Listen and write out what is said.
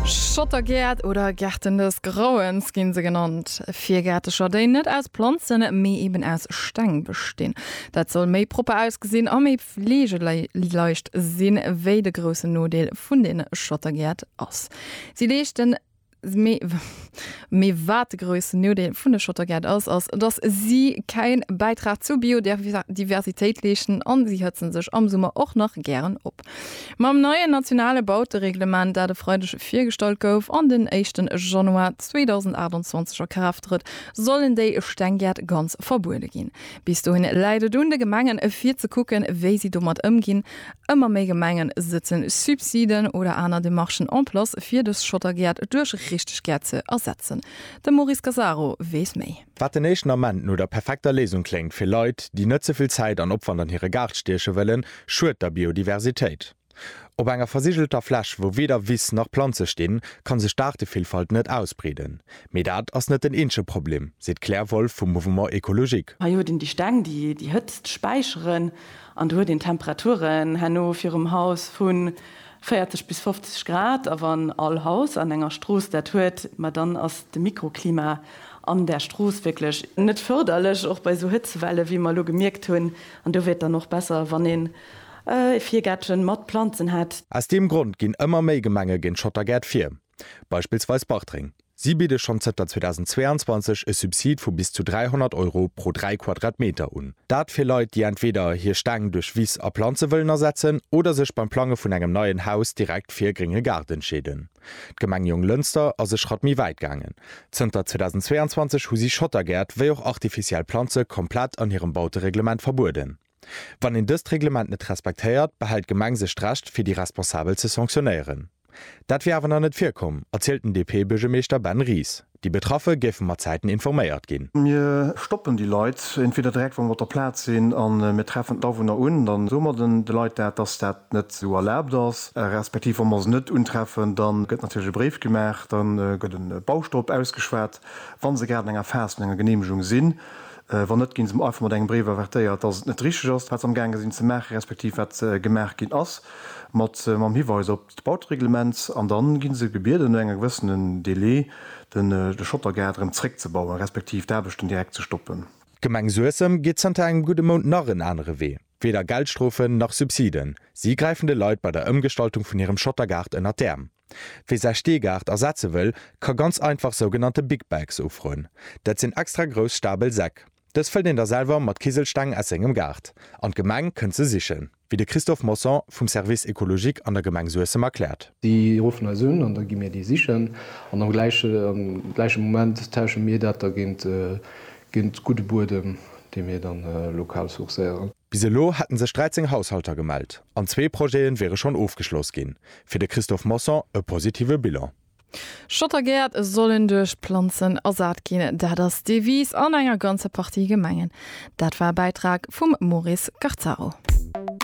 Schottergäert oder Gärten des Grauens ginn se genannt, Virgäertecher déi net aus Planzen, mee eben aus Steng bestinn. Dat soll méi propper ausgesinn a méi fleegeleicht sinn, wéi de groussen Nodeel vun den Schottergäert ass, si leeschten Mee wat de groussen Nodeel vun de Schottergäert ass, ass, datt si käin Bäitrag zur Biodiversitéit leeschten an si hëtzen sech am Summer och nach gären op. Mam neien nationale Bautereglement, dat e Freideg virgestallt gouf an den éischten Januar 2028 a Kraaft trëtt, sollen déi Stenggäert ganz verbuede ginn. Bis dohin läit et un de Gemengen, fir ze kucken, wéi si domat ëmginn. Ëmmer méi Gemenge sëtzen Subsiden oder aner Demarchen en place fir dës Schottergäert duerch richteg Gäert ze ersetzen. De Maurice Gasaro weess méi. Wat den éischten Ament no der perfekter Léisung kléngt fir Leit, déi net ze vill Zäit an Opwand an hire Gaart stieche wëllen, schued der Biodiversitéit. Op enger versigelter Fläch, wou weder Wiss nach Planze stinn, kann sech d'Aartevillfalt net ausbreeden. Mee dat ass net den eenzege Problem, seet d'Claire Wolff vum Mouvement Ecologique. Hei huet een déi Steng, déi déi Hëtzt späicheren An do huet een Temperaturen herno virum Haus vu 40 bis 50 Grad. A wann all Haus an enger Strooss dat huet, ma dann ass de Mikroklima an där Strooss wierklech net fërderlech, och bei esou Hëtzewelle wéi mer elo gemierkt hunn. An do wier et dann och besser, wann een e Virgäertchen mat Planzen hätt. Aus deem Grond ginn ëmmer méi Gemenge géint Schottergäert vir. Beispillsweis Bartreng. Si bidde schonn zënter 2022 e Subsid vu bis zu 300 Euro pro 3 Quadratmeter un. Dat fir Leit, déi entweder hir Steng duerch Wiss a Planze wëllen ersetzen oder sech beim Plange vun engem neien Haus direkt fir e grénge Gaart entscheeden. D'Gemeng Jonglënster ass e Schratt méi wäit gaangen. Zënter 2022 hu si Schottergäert wéi och artificiell Planze komplett an hirem Bautereglement verbueden. Wann een dëst Reglement net respektéiert, behält d'Gemeng sech d'Recht, fir déi Responsabel ze sanktionéieren. Dat wier awer nach net virkomm, erzielt den DP-Buergermeeschter Ben Ries. Déi Betraffe géife mat Zäiten informéiert ginn. Mir stoppen déi Leit entweder direkt, wa mer op der Plaz sinn, a mir treffen d'Awunner un. Da soe mer de Leit dat, dass dat net esou erlaabt ass. Respektiv wa mer se net untreffen, da gëtt natierlech e Bréif gemaach, da gëtt e Baustopp ausgeschwat, wa se grad an enger Phas vun enger Geneemegung sinn. Wann net, ginn se einfach mat engem Bréif avertéiert, dass et net richteg ass, wat se am gaange sinn ze maachen, respektiv wat gemaach ginn ass, mat mam Hiweis op d'Bautereglement. An da ginn se gebieden, no enger gewëssenen Délai den de Schottergaart erëm zréckzebauen, respektiv d'Aarbechten direkt ze stoppen. D'Gemeng Suessem geet zënter engem gudde Mount nach en anere Wee. Weder Geldstrofen, nach Subsiden. Si gräifen de Leit bei der Ëmgestaltung vun hirem Schottergaart ënnert d'Äerm. Wie säi Steegaart ersetze wëll, ka ganz einfach sougenannte Big Bags ufroen. Dat sinn extra grouss stabel Säck. Dës fëllt een da selwer mat Kiselsteng aus sengem Gaart an d'Gemeng kënnt se sichen, wéi de Christophe Mosson vum Service écologique an der Gemeng Suessem erkläert. Si ruffen eis un an da gi mir déi sichen an am gläiche Moment tausche mir dat da géint gudde Buedem, dee mir da lokal sourcéieren. Bis elo hätten sech 13 Haushalter gemellt an zwee Projete wiere schonn ofgeschloss ginn. Fir de Christophe Mosson e positive Bilan. Schottergäert sollen duerch Planzen ersat ginn, dat ass d'Devise an enger ganzer Partie Gemengen. Dat war e Bäitrag vum Maurice Garzaro.